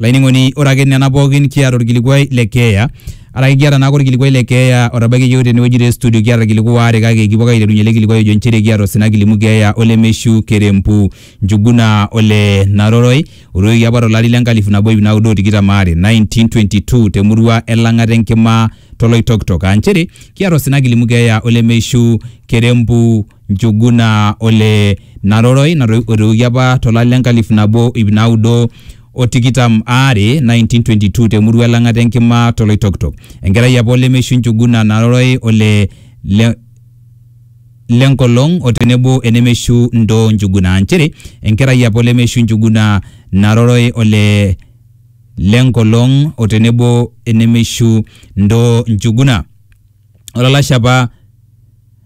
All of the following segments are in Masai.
Olainining'oni ore ake nena pookin kiata orkilikuai le keeya araki kiata naake orkilikuai le keeya otabaiki iyiook tenewueji te studio kiata irkiliku waare kake kipuo ake aiterunyie ele kilikuai ojo inchere kiata osina kilimu keeya ole Meshu Kerempu Njuguna ole Naroroi otoiwuoki apa to lari le nkalifu nabo iip naudo o tikitam aare, 1922 te murua e Lang'ata Enkima to Loitokitok aa inchere kiata osina kilimu keeya ole Meshu Kerempu Njuguna o le Naroroi natoiwuoki apa to lari le nkalifu nabo o iip naudo o tikitam aare, 1922, te murua e Lang'ata e Nkima to Loitoktok. Enkerai apa o Lemeishu Njuguna Naroroi o le le le Nkolong o tenebo e Nemeishu Ndoo Njuguna aa nchere enkerai apa o Lemeishu Njuguna Naroroi o le le Nkolong o tenebo e Nemeishu Ndoo Njuguna. Olalashe apa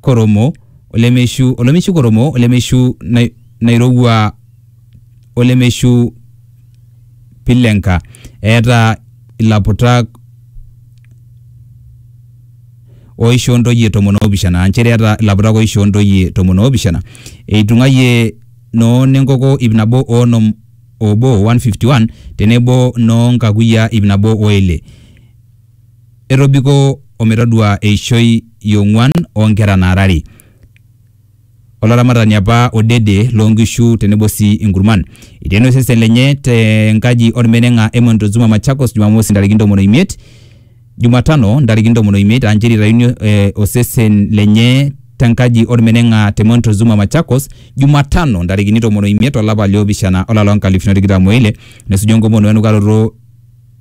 koromo olemeishu olemeishu koromo olemeishu nai, nairowua olemeishu pilenka eeta ilaputak oishoo ntoyie tomon oopishana aa nchere eeta ilaputak oishoo ntoyie tomon oopishana eitung'aiye noo nenkoko ip nabo oonom obo 151 tenebo noo nkakuyia ip nabo o ile etobiko o metadua eishoi e ong'uan oo nkera naara are. Olaramatani apa odede loo nkishu tenebo sii inkurman. Eteena osesen lenye te nkaji olmeneng'a Emon Tuzuma Machakos Jumamosi ntarikini ntomoni o imiet, Jumatano ntarikini ntomoni o imiet aa nchere eitayuni osesen lenye te nkaji olmeneng'a te Emon Tuzuma Machakos Jumatano ntarikini tomon o imiet o lapa li opishana o lari loo nkalifuni o tikitam o ile nesuju enkomono we enukaroto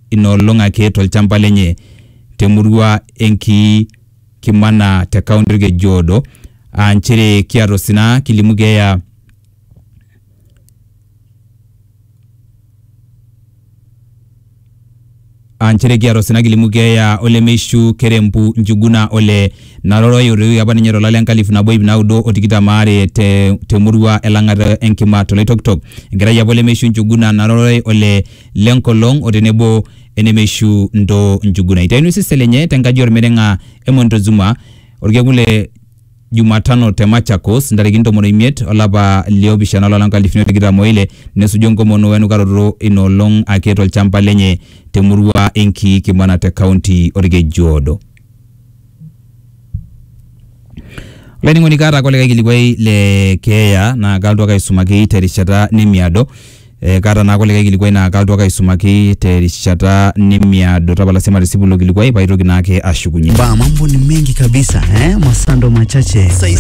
ina olong ake tolchamba lenye te murua e Nkii Kimana te kaunti Olkejuodo aa nchere kiata osina kilimu keeya aa nchere kiata osina kilimu keeya olemeishu Kerempu Njuguna ole Naroroi otoiwuoki apa ninye tolari le nkalifu nabo iip naudo o tikitam aare te te murua e Lang'ata e Nkima to Loitokitok. Enkerai apa olemeishu Njuguna Naroroi ole le nkolong o tenebo enemeishu Ntoo Njuguna. Eitaini osesen lenye te nkaji olmeneng'a e Montezuma olkekun le Jumatano te Machakos ntarikini tomon o imiet o lapa li opishana olari loo nkalifuni o tikitam o ile nesuju enkomono o enukaroto ina olong ake to lchamba lenye te murua e Nkiikimana te kaunti o Lkejuodo. olainining'oni kaata ake olikae kilikuai le keeya naa kalotu ake aisumaki terishata nemiado eh, kaata naake olikae kilikuai naa kalotu ake aisumaki terishata nemiado tapala sii matisipu ilo kilikuai paitoki naake ashukunye Ba, mambo ni mengi kabisa eh? Masando machache.